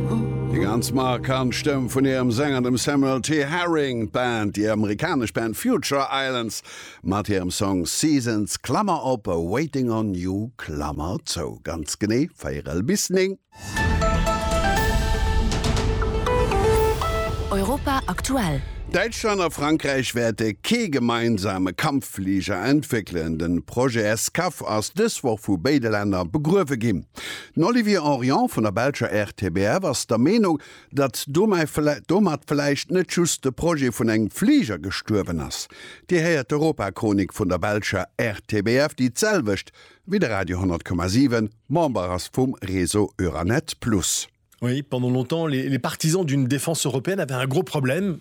Eng ganz markant Stëmm vun hirem Sänger, dem Samuel T. Herring. D'Band, déi amerikanesch Band Future Islands mat hirem Song Seasons, Klammer op, Waiting on You, Klammer zou, ganz genee véierel bis néng. Europa aktuell. Däitschland a Frankräich wäerte kee gemeinsame Kampffliger entwéckelen. Den Projet SCAF ass dës Woch vu béide Länner begruewe ginn. Den Olivier Henrion vun der belscher RTBF ass der Meenung, datt domat vläicht net just de Projet vun engem Fliger gestuerwen ass. Dir héiert d'Europachronik vun der belscher RTBF, déi d'selwecht wéi de Radio 10,7 Member ass vum Réseau Euranet Plus. Oui, pendant longtemps, les partisans d'une défense européenne avaient un gros problème.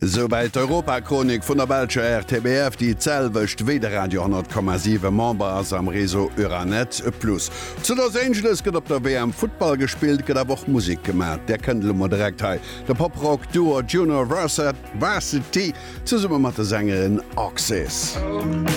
Souwäit d'Europachronik vun der belscher RTBF, déi d'selwecht wéi de Radio 10,7 Member ass am Réseau Euranet Plus. Zu Los Angeles gëtt op der WM Futtball gespillt, gëtt awer och Musek gemaach. Där kënnt elo mol direkt hei de Pop-Rock Duo Junior Varsity zesumme mat de Sängerin Oxys.